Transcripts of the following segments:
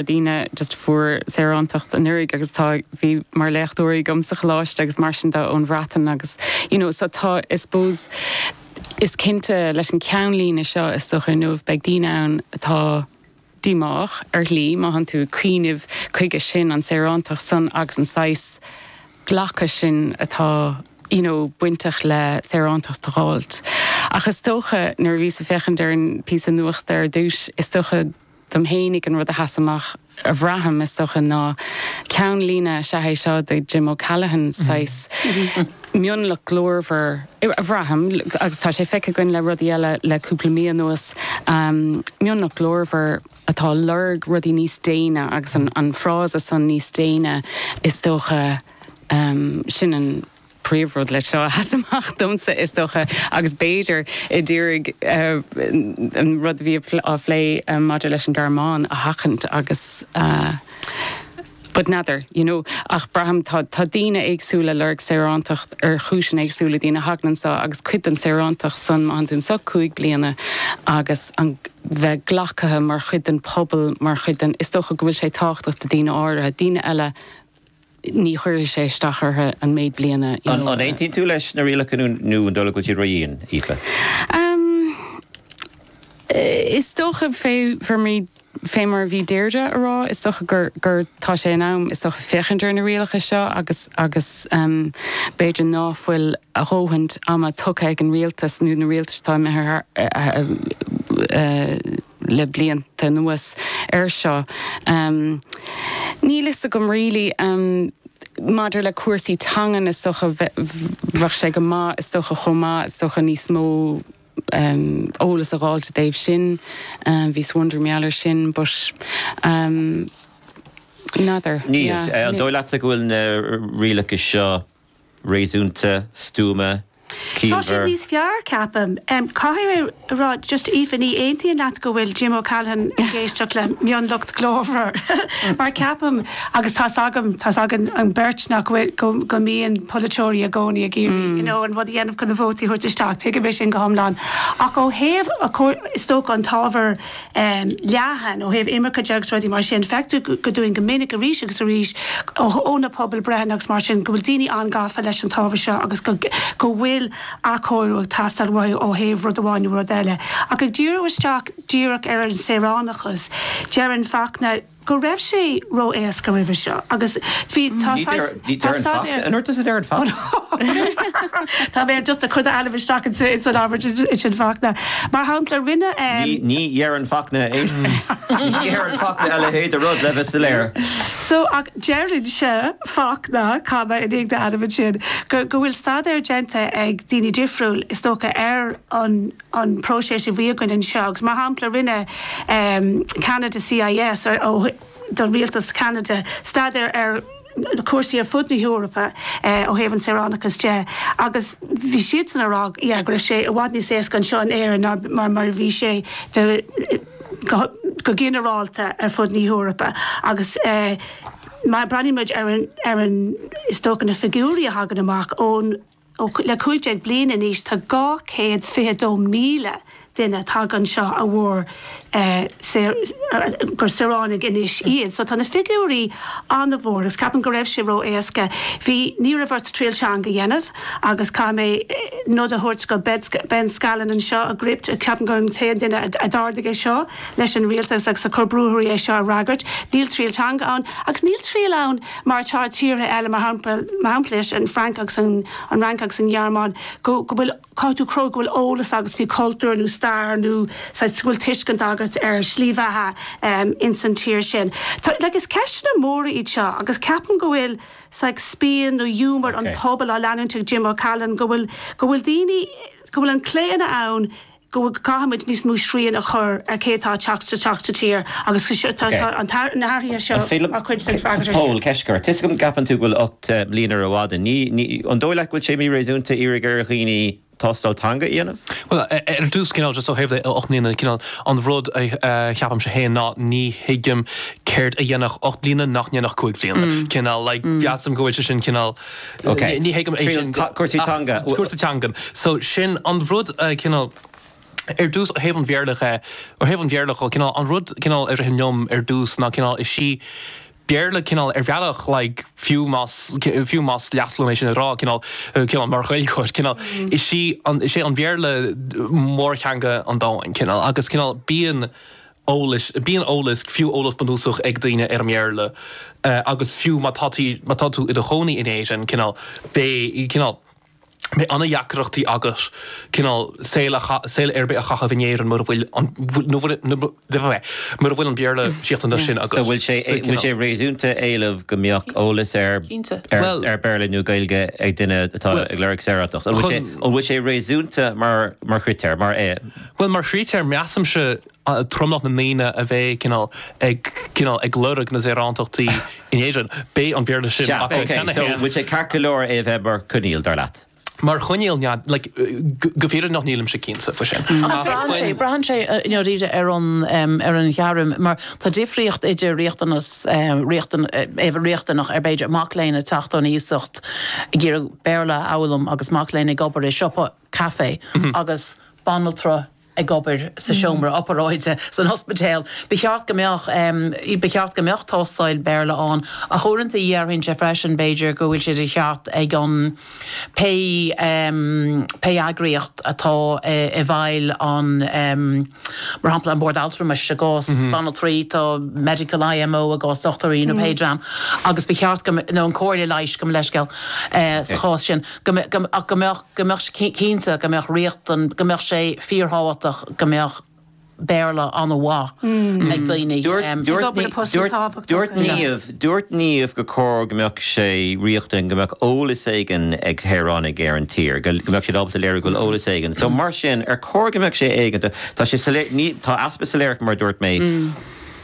na daoine just a fuair saorántacht anuraidh agus táid mar léachtóirí agam sa choláiste agus mar sin tá ón Bhreatain agus you know so tá I suppose is cinnte leis an ceannlíne seo is dócha inniu beidh daoine ann atá díomách ar shlí má tánn tú ag cuimhneamh chuige sin, an saorántacht san agus an saghas glacadh sin atá you know bainteach le saorántacht a dh'fháil ach is dócha nuair a bhíos ag féachaint ar an píosa nuachta ar dtús is dócha go Dom fhéinig, an rud a sheas amach a bhraithim, is dócha, ná ceannlíne, sea, cé hé seo do Jim O'Callaghan, saghas mionlach glórmhar a bhraithim, agus tá sé feicthe againn le rudaí eile le cúpla mí anuas, mionlach glórmhar atá ag lorg rudaí níos déine, agus an frása san níos déine, is dócha, sin an. príomhrud leis seo a sheas amach domsa, is dócha, agus b'fhéidir ag iarraidh an rud a bhí á phlé maidir leis an Ghearmáin a sheachaint agus but n'fheadar, you know. Ach braithim, tá daoine éagsúla ag lorg saorántacht ar chúiseanna éagsúla, daoine a thagann anseo agus cuid den saorántacht san, má thagann tú anseo cúig bliana agus an bheith glacaithe mar chuid den pobal, mar chuid den, is dócha go bhfuil sé tábhachtach do daoine áirithe, daoine eile, ní chuirfidh sé isteach orthu an méid blianta. An aontaíonn tú leis na rialacha nó an dóigh leat go bhfuil siad ró-dhian, Aoife? Is dócha, fé mar a bhí Deirdre ag rá, is dócha gur tá sé in am, is dócha, féachaint ar na rialacha seo agus agus b'fhéidir ná fuil a dhóthaint ama tugtha ag an rialtas nó na rialtais atá imithe thart, le blianta anuas air seo. Níl a fhios agam really maidir le cúrsaí teangan is dócha bheadh sé go maith is dócha chomh maith is dócha níos mó eolas a dh'fháil ina thaobh san, bhíos i ndeireadh thall air sin but n'fheadar yeah. Níl. An dóigh leatsa go bhfuil na rialacha seo réasúnta, stuama, Tá siad ciallmhar. níos fearr, ceapaim. Caithfidh mé a rá, just Aoife, ní aontaím leat go bhfuil Jim O'Callaghan ag éisteacht le mionlach glórmhar, mar ceapaim, agus tá's agam, tá's againn an beirt, nach bhfuil, go, go mbíonn polaiteoirí i gcónaí ag iarraidh, you know, an rud a dhéanamh chun na vótaí a thabhairt isteach, tuigim é sin go hiomlán, ach ó thaobh, is dócha, an t-ábhar, leathan ó thaobh imirce de agus rudaí mar sin. Feictear dúinn go minic arís agus arís ó na pobalbhreitheanna agus mar sin go bhfuil daoine an-gafa leis an t-ábhar seo agus go bhfuil athchóiriú ag teastáil uathu ó thaobh rud amháin nó rud eile. Ach ag díriú isteach díreach ar an saoránachas, deireann Fachtna, go raibh sé ró-éasca roimhe seo agus bhí, tá saghas, tá staidéar. Anoir tusa a deireann Fachtna. Tá mé just a' cur d'ainm isteach ins an abairt sin Fachtna. Mar shampla rinne. Ní dheireann Fachtna é sin. Ní dheireann Fachtna a leithéid de rud, le bheith soiléir. So ach deireann sé, Fachtna, comma, i ndiaidh d'ainm ansin, go bhfuil staidéar déanta ag daoine difriúil is dócha ar an. an próiseas a bhí againn anseo agus mar shampla rinne Ceanada CIS do rialtas Cheanada staidéar ar na cúrsaí ar fud na hEorpa ó thaobh an saoránachas de agus bhí siadsan ag rá yeah go raibh sé i bhfad níos éasca anseo in Éirinn ná mar a bhí sé go ginearálta ar fud na hEorpa agus má breathnaímid ar an is dócha na figiúirí a thagann amach ón Le 15 bliain anois tá 222,000 duine tagtha anseo a mhair gur saoránaigh anois iad. So tá na figiúirí an-mhór agus ceapaim go raibh sé ró-éasca. Bhí, ní raibh ort triail teanga a dhéanamh agus caithfidh mé nod a thabhairt go Ben Scallan anseo ag Gript, ceapaim gur an t-aon duine a d'ardaigh é seo leis an rialtas agus a chuir brú orthu é seo a fhreagairt. Níl triail teanga ann agus níl triail ann, mar atá tíortha eile, mar shampla leis an Frainc agus an Fhrainc agus an Ghearmáin, go bhfuil caithfidh tú cruthú go bhfuil eolas agat faoi chultúr nó stair nó saghas bhfuil tuiscint agat ar shlí bheatha ins an tír sin. Tá like is ceisteanna móra iad seo agus ceapaim go bhfuil saghas spion nó ghiúmar an pobail á leanúint ag Jim O'Callaghan go bhfuil go bhfuil daoine go bhfuil an claonadh ann go gcaithfimid níos mó srian a chur ar cé atá ag teacht isteach sa tír agus tá na hathruithe seo mar chuid den freagairt air sin. Pól, Ceist agat. Tá a fhios agam go gceapann tú go bhfuil ocht mbliana rófhada. An dóigh leat go bhfuil sé míréasúnta iarraidh ar dhaoine tástáil teanga a dhéanamh? Bhuel, ar dtús, cineál, just ó thaobh na ocht mbliana, cineál, an rud a cheapaimse féin ná ní thuigim céard a dhéanfadh ocht mbliana nach ndéanfadh cúig bhliana. Cineál, like, measaim go bhfuil sé sin cineál, Ok. Ní thuigim é sin. Cúrsaí teanga. Ah, cúrsaí teangan. So, sin an rud, cineál, ar dtús, ó thaobh an Bhéarla dhe, ó thaobh an Bhéarla dho, cineál, an rud, cineál, a ritheann liom ar dtús ná, cineál, is í Béarla, cineál, ar bhealach, like, fiú más, fiú más leasc liom é sin a rá, cineál, cineál, mar Ghaeilgeoir, cineál, is í an, is é an Béarla mórtheanga an domhain, cineál, agus, cineál, bíonn, eolas. Bíonn eolas, fiú eolas bunúsach, ag daoine ar an mBéarla agus fiú má tá tú, má tá tú i do chónaí in Éirinn, cineál, beidh, cineál, beidh an-deacrachtaí agat, cineál, saol a, saol ar bith a chaitheamh in Éirinn mura bhfuil an, nó mura, mura bhfuil an Béarla seachtaine sin agat. An bhfuil sé, an bhfuil sé réasúnta éileamh go mbeadh eolas ar, ar, ar Béarla nó Gaeilge ag duine atá ag lorg saoránachta? An bhfuil sé, an bhfuil sé réasúnta mar, mar chritéar, mar. Bhuel, mar chritéar, measaimse tromlach na ndaoine a bheidh, cineál, ag, cineál, ag lorg na saorántachtaí in Éirinn. Beidh an Béarla sin acu cheana féin. Sea, ok, so bhfuil sé ceart go leor é a bheith mar choinníoll, dar leat? Mar choinníoll, nah, like, go, go fírinneach nílimse cinnte faoi sin. Ach braitheann sé, braitheann sé i ndáiríre ar an, ar an ghairm, mar tá difríocht idir riachtanas, riachtan, atá riachtanach ar b'fhéidir mac léinn ag teacht ón iasacht ag iarraidh Béarla a fhoghlaim agus mac léinn ag obair i siopa, caife agus banaltra ag obair sa seomra opearáide san ospidéal. Ba cheart go mbeadh, ba cheart go mbeadh tástáil Béarla ann ach uaireanta déarfainn féin freisin b'fhéidir go bhfuil sé de cheart ag an, pé, pé eagraíocht atá i bhfeighil an, mar shampla an Bord Altramais i gcás banaltraí, tá Medical IMO i gcás dochtúirí nó pé dream agus ba cheart go, nó an Comhairle Leighis gabh mo leithscéal sa chás sin, go, go, go mbeadh. go mbeadh sé cinnte go mbeadh riachtan, go mbeadh sé fíorthábhachtach go mbeadh Béarla an-mhaith ag daoine. Dúirt Niamh gur chóir go mbeadh sé riachtan go mbeadh eolas éigin ag saoránaigh ar an tír, go mbeadh siad ábalta léiriú go bhfuil eolas éigin. So mar sin, ar chóir go mbeadh sé éigeanta? Tá sé soiléir, ní, tá easpa soiléireacht mar a dúirt mé.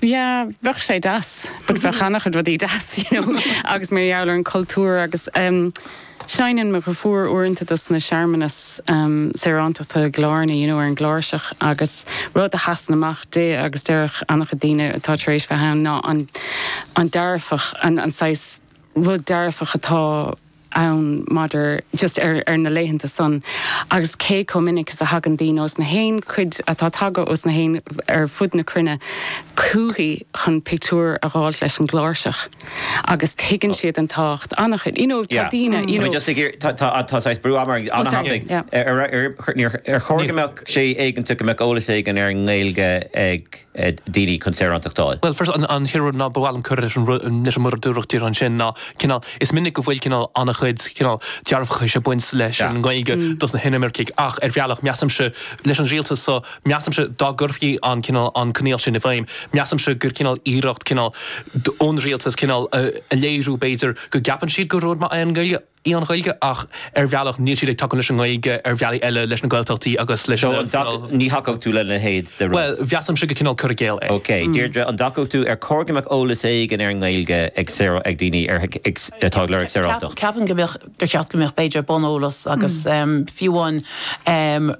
yeah bheadh sé deas but bheadh ana-chuid rudaí deas you know agus mar gheall ar an chultúr agus em seinneann mo dheirfiúr uaireanta dos na searmanas em saorántachta i gCill Airne you know ar an gcláirseach agus rud a sheasann amach di agus deireann ana-chuid daoine atá tar éis bheith ann ná an an dearfach an an saghas rud dearfach atá ann maidir just ar ar na laethanta san agus cé chomh minic is a thagann daoine ós na haon chuid atá tagtha ós na haon ar fud na cruinne chúichi chun pictiúir a fháilt leis an gcláirseach agus tuigeann siad an tábhacht an-chuid you know tá daoine you know just ag tá tá tá saghas brú ana-thábhachtach ar ar ar ar chóir go mbeadh sé éigeanta go mbeadh eolas éigin ar an nGaeilge ag ag daoine chun saorántacht d'fháil. Bhuel, first, an chéad rud ná ba mhaith liom cur leis an rud, leis an rud a dúradh díreach ansin ná, cineál, is minic go bhfuil, cineál, an-chuid, cineál, dearfachais ag baint leis an nGaeilge dos na hinimircigh ach, ar bhealach, measaimse, leis an Rialtas so, measaimse dá gcuirfí an, cineál, an coinníoll sin i bhfeidhm, measaimse gur, cineál, iarracht, cineál, ón Rialtas, cineál, a léiriú, b'fhéidir, go gceapann siad gur rud maith é an Ghaeilge. í an Ghaeilge ach ar bhealach níl siad ag tacú leis an nGaeilge ar bhealaí eile, leis na Gaeltachtaí agus leis an bhfuinneamh. So, ní thacódh tú lena leithéid de rud? Bhuel, measaimse gur cineál cur i gcéill é. Ok, Deirdre, an dtacódh tú ar chóir go mbeadh eolas éigin ar an nGaeilge ag daoine atá ag lorg saorántacht? Ceapaim go mbeadh, gur cheart go mbeadh b'fhéidir, bun eolas agus fiú amháin.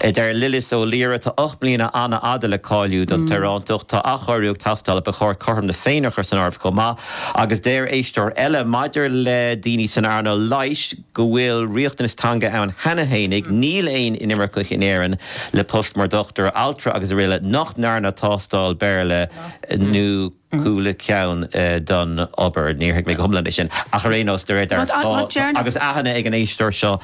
Deir Lillis Ó Laoire, Tá ocht mbliana an-fhada le cáiliú don tsaorántacht. Tá athchóiriú ag teastáil agus ba chóir cothrom na Féinne a chur san áireamh chomh maith. Agus deir éisteoir eile, Maidir le daoine san earnáil leighis, go bhfuil riachtanas teanga ann cheana fhéinig, níl aon inimirceach in Éirinn le post mar dochtúir, altra agus araile nach ndearna tástáil Béarla nó. cúpla ceann don obair, níor thuig mé go hiomlán é sin, ach ar aon nós, de réir dealraimh, tá, agus aithne ag an éisteoir seo,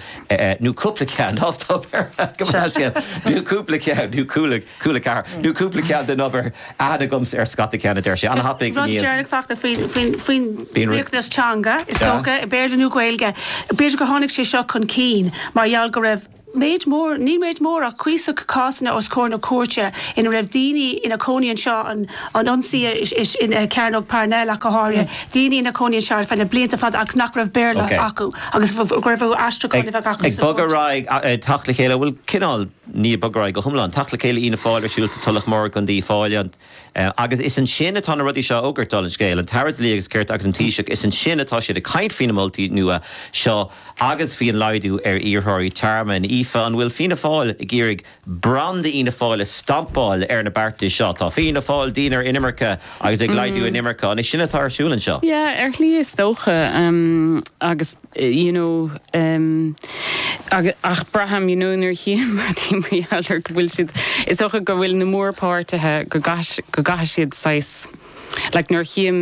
nó cúpla ceann, nós tá obair, cuma sa scéal, nó cúpla ceann, nó chuala, chuala ceathair, nó cúpla ceann den obair, aithne aige ar scata ceann, a deir sé, ana-thapaidh, níl. Rud deireanach Fachtna faoin, faoin, faoin riachtanas teanga, is dócha, Béarla nó Gaeilge, b'fhéidir gur tháinig sé seo chun cinn mar gheall go raibh, méid mór, ní méid mór ach cuíosach cásanna os comhair na cúirte ina raibh daoine ina gcónaí anseo, an ionsaí i gCearnóg Parnell ach go háirithe, daoine ina gcónaí anseo ar feadh na blianta fada agus nach raibh Béarla acu agus go raibh orthu aistriúchán a bheith acu sna cúirteanna. Ag bogadh ar aghaidh, teacht le chéile, bhuel cineál, ní ag bogadh ar aghaidh go hiomlán, teacht le chéile Fhianna Fáil ar siúl sa Tulach Mhór go dtí Fáil an. Agus is ansin atá na rudaí seo á bhfógairt, dála an scéil, an tAire Dlí agus Cirt agus an Taoiseach, is ansin atá siad ag caint faoi na moltaí nua seo agus faoin laghdú ar iarrthóirí tearmainn. Aoife, an bhfuil Fianna Fáil ag iarraidh branda Fhianna Fáil a stampáil ar na beartais seo? Tá Fianna Fáil, dian ar inimirce agus ag laghdú inimirce, an é sin atá ar siúl anseo? Yeah, ar shlí is dócha. Agus. you know em agus ach braithim you know nuair a chíom rudaí mar gheall ar go bhfuil siad is dócha go bhfuil na mórpháirtithe go gcais go gcaithfidh siad saghas like nuair a chím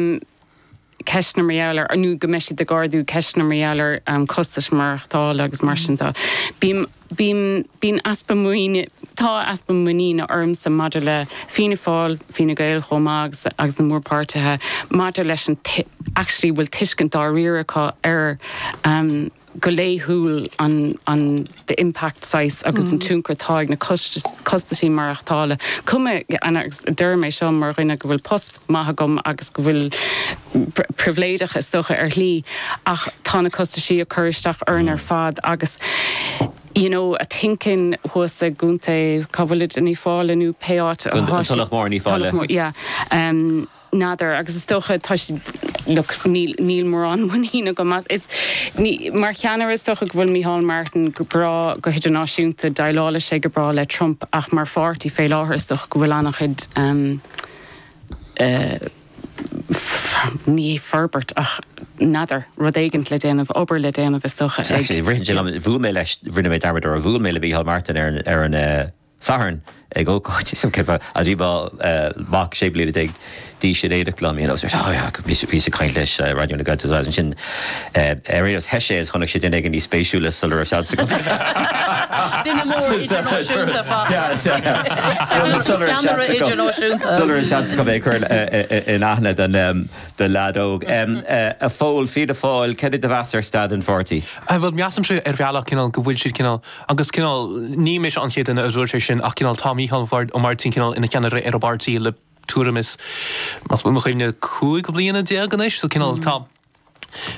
ceisteanna mar gheall ar nó go mbeidh siad ag ardú ceisteanna mar gheall ar am costais maireachtála agus mar sin de bím Bíonn, bíonn easpa muiníne, tá easpa muiníne agamsa maidir le Fianna Fáil, Fine Gael chomh maith agus, agus na mórpháirtithe maidir leis an t-, actually bhfuil tuiscint dáiríre acu ar go laethúil an, an, the impact saghas agus an tionchar atá ag na costais, costaisí maireachtála. Cuma, agus deirim é seo mar dhuine go bhfuil post maith agam agus go bhfuilim pribhléideach, is dócha, ar shlí, ach tá na costaisí ag cur isteach orainn ar fad agus you know a think-in thuas i gContae, cá bhfuilid, in Uíbh Fhailí nó pé áit atá siad, Tulach Mór in Uíbh Fhailí. Tulach Mór, yeah, em n'fheadar agus is dócha tá siad look níl, níl mórán muinín agam as, is ní, mar cheannaire is dócha go bhfuil Micheál Martin go breá go hidirnáisiúnta, déileáil sé go breá le Trump ach mar pháirtí fé láthair is dócha go bhfuil an-chuid em. ní hé forbairt ach, n'fheadar, rud éigin le déanamh, obair le déanamh is dócha, ag. Exactly. Rith sé liom, bhuail mé leis, rinne mé dearmad ar, bhuail mé le Micheál Martin ar an, ar an eh, Satharn ag ócáid, is cinnte, agus bhí mo eh, mhac sé bliana déag d'aois in éineacht liom, you know, so oh yeah, bhíos, bhíos ag caint leis eh, Raidió na Gaeltachta agus ansin, Ar aon nós, theith sé is chonaic sé duine éigin níos spéisiúla sula raibh seans agam. Duine mór idirnáisiúnta, ach! Ceannaire idirnáisiúnta. Sula raibh seans agam é a chur in aithne don leaid óg. A Phóil, Fianna Fáil, cad é do mheas ar staid an pháirtí? Bhuel, measaimse ar bhealach cineál go bhfuil siad cineál, agus cineál, ní mise an chéad duine a dúirt é sin ach cineál tá Mícheál Mar, Ó Máirtín cineál ina cheannaire ar an bpáirtí le, tuairim is, más buan mo chuimhne, cúig bliana déag anois. So cineál, tá,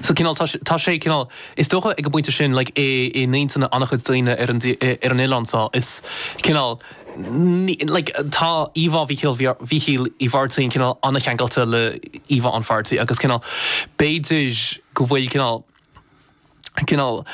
so cineál, tá, tá sé cineál, is dócha ag an bpointe sin, like, i, i n-intinn an-chuid daoine ar an, ar an oileán so, cineál, ní, like, tá íomhá Mhíchíl, Mhíchíl Uí Mháirtín cineál an-cheangailte le íomhá an pháirtí agus cineál, b'fhéidir go bhfuil cineál, cineál,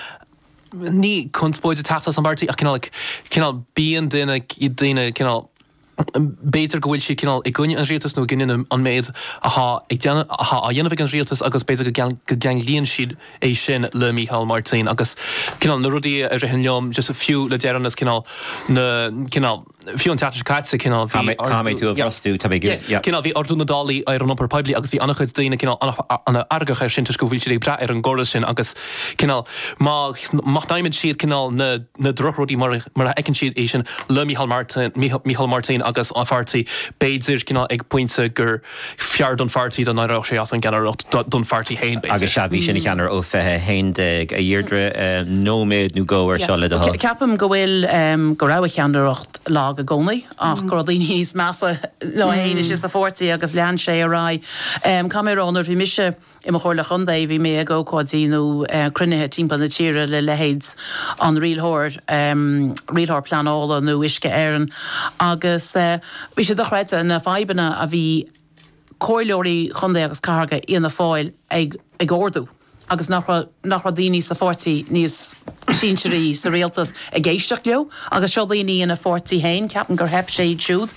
ní conspóid ag teacht as an bpáirtí ach cineál, like, cineál bíonn daoine, daoine cineál, B'fhéidir go bhfuil siad cineál i gcoinne an rialtas nó i gcoinne an méid atá ag dé, atá á dhéanamh ag an rialtas agus b'fhéidir go go gceanglaíonn siad é sin le Mícheál Máirtín agus cineál na rudaí a ritheann liom just fiú le deireanas cineál na cineál fiú an tseachtain seo caite cineál bhí Cá mbeidh tú a bhrostú? Tá bhí yeah cineál bhí ardú na dtáillí ar an iompar poiblí agus bhí an-chuid daoine cineál an-fheargach ar sin toisc go bhfuil siad ag brath ar an gcóras sin agus cineál má má shnaidhmeann siad cineál na na drochrudaí mar a fheiceann siad é sin le Micheál Martin, Micheál Martin agus a pháirtí, b'fhéidir, cineál ag pointe gur fearr don pháirtí dá n-éireodh sé as an gceannaireacht, don pháirtí féin, Agus b'fhéidir. sea, bhí sé ina cheannaire ó 20 11 a Dheirdre, nóiméad nó dhó ar seo le do thoil. Ceapaim go bhfuil, go raibh a cheannaireacht lag i gcónaí ach go raibh daoine níos measa ná é fhéin, is é, sa pháirtí agus lean sé ar aghaidh. Ceapaim mar nuair a bhí mise. I mo Chomhairleoir Contae, bhí mé ag ócáidí nó cruinnithe timpeall na tíre le leithéid an rialthóir, rialthóir pleanála nó Uisce Éireann agus bhí sé dochreidte na fadhbanna a bhí Comhairleoirí Chontae agus Cathracha Fhianna Fáil ag ardú agus nach raibh, nach raibh daoine sa pháirtí níos sinsearaí sa rialtas ag éisteacht leo agus seo daoine ina pháirtí féin, ceapaim gur theip air siúd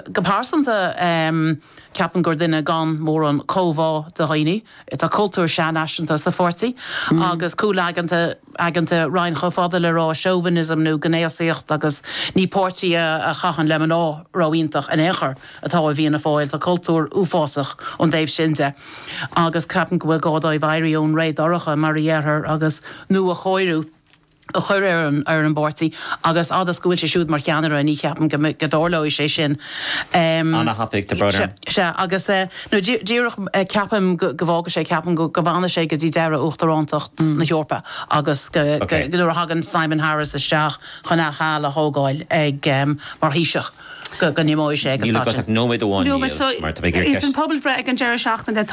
go pearsanta. Ceapaim gur duine gan mórán comhbhá do dhaoine. Tá cultúr sean-fhaiseanta sa pháirtí agus cúlaigeanta, aigeanta roimh chomh fada le ré chauvinism nó gnéasaíocht agus ní páirtí a a chaitheann le mná ró iontach in aon chor atá i bhFianna Fáil. Tá cultúr uafásach ón dtaobh sin de agus ceapaim go bhfuil gá dóibh éirí ón ré dorcha mar a déarfá agus nuachóiriú. a chur ar an bpáirtí agus fhad is go bhfuil sé siúd mar cheannaire ní cheapaim go dtarlóidh sé sin. Ana-thapaidh, Deirdre. Sea, agus anois díreach ceapaim go bhfágfaidh sé, ceapaim go bhfanfaidh sé go dtí deireadh uachtarántacht na hEorpa agus go, nuair a thagann Simon Harris isteach chun athsheal a thógáil ag mar Thaoiseach, go n-imeoidh sé ag an staid sin. Níl agat ach nóiméad amháin, Niall, mar tá mé ag iarraidh ceist. Sa bpobalbhreith ag an deireadh seachtaine, tá.